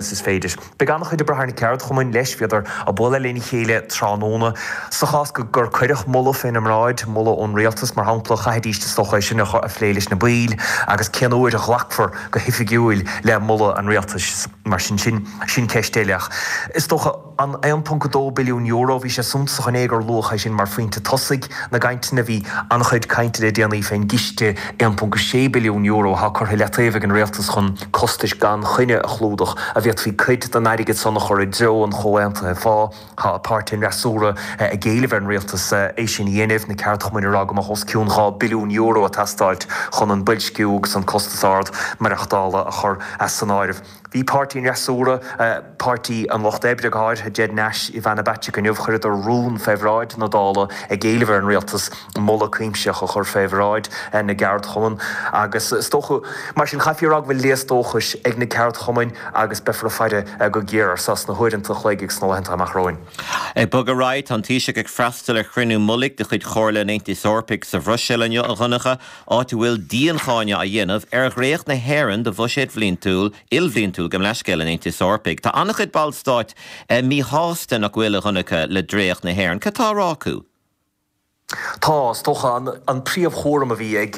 Is is féidir. Beidh an-chuid oibre ar na ceardchumainn leis, bhíodar á bualadh lena chéile tráthnóna. Sa chás go, gur cuireadh moladh fé na mbráid, moladh ón rialtas, mar shampla, chaithfidís na tograí sin a a phlé leis na baill, agus cén uair a ghlacfar go hoifigiúil le moladh an rialtais, mar sin, sin, sin ceist eile. Ach is dócha. an €1.2 billiún, bhí sé suntasach ann é gur luadh é sin mar phointe tosaigh na gcainteanna. Bhí an-chuid cainte le déanaí fén gciste €1.6 billiún atá curtha i leataobh ag an Rialtas chun costais gan choinne a chlúdach a bhféadfaí cuid den airgead san a chur i dtreo an Chomhaontaithe Phá. Tá páirtithe an fhreasúra ag éileamh ar an Rialtas é sin a dhéanamh, na ceardchumainn ag rá go mbeadh os cionn €2 billiún ag teastáilt chun an boilsciú agus an costas ard maireachtála a chur as an áireamh. Bhí páirtí an fhreasúra, Páirtí an Lucht Oibre, go háirithe Ged Nash, Ivana Bacik inniu, chuireadar rún fé bhráid na Dála ag éileamh ar an rialtas moladh cuimsitheach a chur fé bhráid na gceardchumann agus is dócha, mar sin, chaithfí a rá go bhfuil léas dóchais ag na ceardchumainn agus beifear ag faire go géar ar seo sna huaireanta an chloig agus sna laethanta amach romhainn. Ag bogadh ar aghaidh, tá an Taoiseach ag freastal ar chruinniú mullaigh de chuid Chomhairle an Aontais Eorpaigh sa Bhruiséil inniu, a Dhonncha, áit a bhfuil diancháineadh á dhéanamh ar dhréacht na hÉireann do bhuiséad bhliantúil, ilbhliantúil gabh mo leithscéal an Aontais Eorpaigh. Tá an-chuid Ballstát míshásta nach bhfuil a dhonacha le dréacht na hÉireann. Cad tá á rá acu? Tá, is dócha, an príomhchúram a bhí ag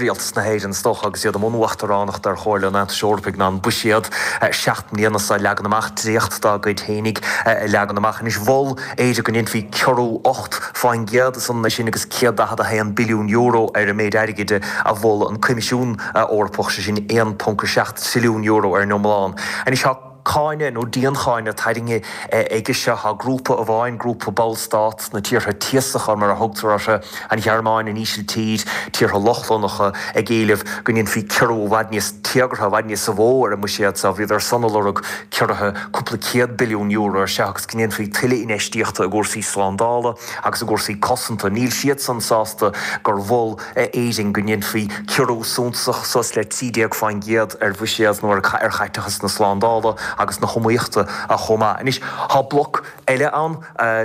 Rialtas na hÉireann, is dócha, agus iad i mbun uachtaránachta ar Chomhairle an Aontais Eorpaigh ná an buiséad seacht mbliana seo a leagan amach, dréacht dá gcuid féinig a leagan amach. Anois, mhol. Éirinn go ndéanfaí ciorrú ocht fán gcéad nó san am sin €141 billiún ar an méid airgid a mhol an Coimisiún Eorpach, sé sin €1.7 trilliún ar an iomlán. Anois tá cáineadh, nó diancháineadh, tarraingthe aige seo tá grúpa amháin, grúpa ballstát, na tíortha tíosacha mar a thugtar orthu, an Ghearmáin, an Ísiltír, tíortha Lochlannacha, ag éileamh go ndéanfaí ciorrú i bhfad níos téagartha, i bhfad níosa mhó ar an mbuiséad seo. Bhíodar san ag lorg ciorraithe cúpla céad billiún euro ar seo. go ndéanfaí tuilleadh infheistíochta i gcúrsaí slándála agus i gcúrsaí cosanta, níl siadsan sásta gur mhol Éirinn go ndéanfaí ciorrú suntasach, suas le 13%, ar bhuiséad nó ar chaiteachas na slándála agus na hiomaíochta chomh maith. Anois tá bloc eile ann,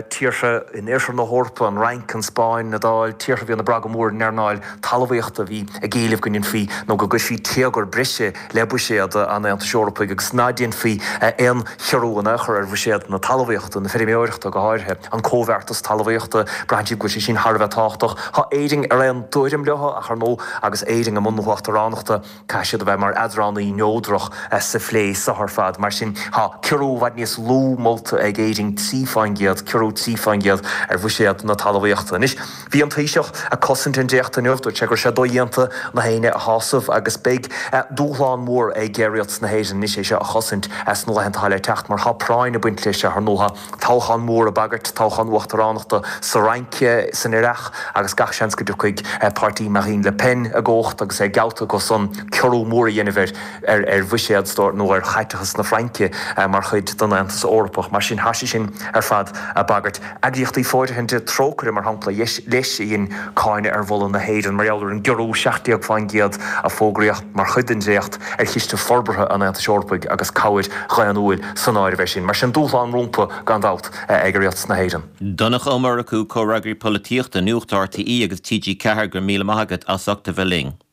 tíortha in oirthear na hEorpa, an Fhrainc, an Spáinn, an Iodáil, tíortha a bhíonn ag brath go mór ar an earnáil talmhaíochta a bhí ag éileamh go ndéanfaí nó go gcuirfí téagar breise, le buiséad an Aontais Eorpaigh agus ná déanfaí aon chiorrú in aon chor ar bhuiséad na talmhaíochta, na feirmeoireachta go háirithe, an Comhbheartas Talmhaíochta, braitheann siad go bhfuil sé sin thar a bheith tábhachtach. Tá Éirinn ar aon tuairim leo ach ar ndóigh agus Éirinn i mbun na huachtaránachta caithfidh siad a bheith mar eadránaí neodrach sa phlé seo ar fad. Mar sin tá ciorrú i bhfad níos lú molta ag Éirinn, trí fán gcéad, ciorrú trí fán gcéad ar bhuiséad na talmhaíochta. Anois. Bhí an Taoiseach ag cosaint an dréachta inniu. Dúirt sé go raibh sé dodhéanta gach éinne a shásamh agus beidh dúshlán mór ag Rialtas na hÉireann anois é seo a chosaint sna laethanta atá le teacht mar tá práinn ag baint leis ar ndóigh, toghchán mór ag bagairt, toghchán uachtaránachta sa Fhrainc, san earrach agus gach seans go dtiocfaidh páirtí Marine Le Pen i gcumhacht agus é geallta acu san ciorrú mór a dhéanamh ar bhuiséad nó ar chaiteachas na Fraince mar chuid den Aontas Eorpach. Mar sin, tá sé sin ar fad ag bagairt. Eagraíochtaí fóirithinte, Trócaire mar shampla, leis, a dhein cáineadh ar mholadh na hÉireann mar gheall ar an gciorrú 17% a fógraíodh mar chuid den dréacht ar chiste forbartha an Aontais Eorpaigh agus cabhair dhaonnúil san áireamh ansin. Mar sin, dúshlán rompu, gan dabht, ag Rialtas na hÉireann. Donncha Ó Murchú, Comhfhreagraí Polaitíochta, Nuacht RTÉ agus TG4 go raibh míle maith agat as ucht a bheith linn.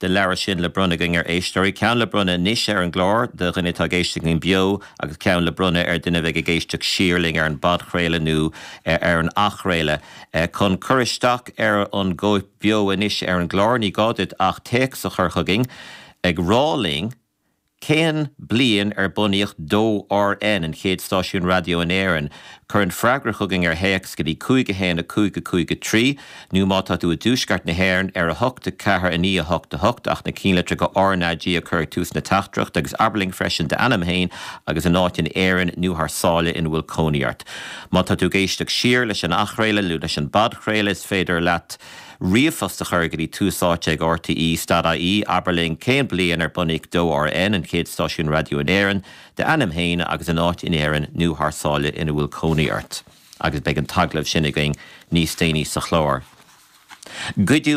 den leabhar sin le bronnadh againn ar éisteoirí, ceann le bronnadh anois ar an gclár do dhuine atá ag éisteacht linn beo agus ceann le bronnadh ar dhuine a bheidh ag éisteacht siar linn ar an bpodchraoladh nó ar an athchraoladh. Chun cur isteach ar an gcóip bheo anois ar an gclár, ní gá duit ach téacs a chur chugainn ag rá linn Cén bliain ar bunaíodh 2RN, an chéad stáisiún raidió in Éirinn? Cuir an freagra chugainn ar théacs go dtí 51553, nó má tá tú i dTuaisceart na hÉireann, ar 8, 4, 9, 8, 8, ach na cinnlitreacha R na G a chur ag tús na teachtaireachta, agus abair linn freisin d'ainm féin agus an áit in Éirinn nó thar sáile ina bhfuil cónaí ort. Má tá tú ag éisteacht siar leis an athchraoladh nó leis an bpodchraoladh, is féidir leat. Ríomhphost a chur go dtí Tús Áite ag RTÉ, stad-IE, Abair linn cén bliain ar bunaíodh DóRN, an chéad stáisiún raidió in Éirinn d'ainm féin agus an áit in Éirinn nó thar sáile ina bhfuil cónaí ort, agus beidh an t-agallamh sin againn níos déanaí sa chlár.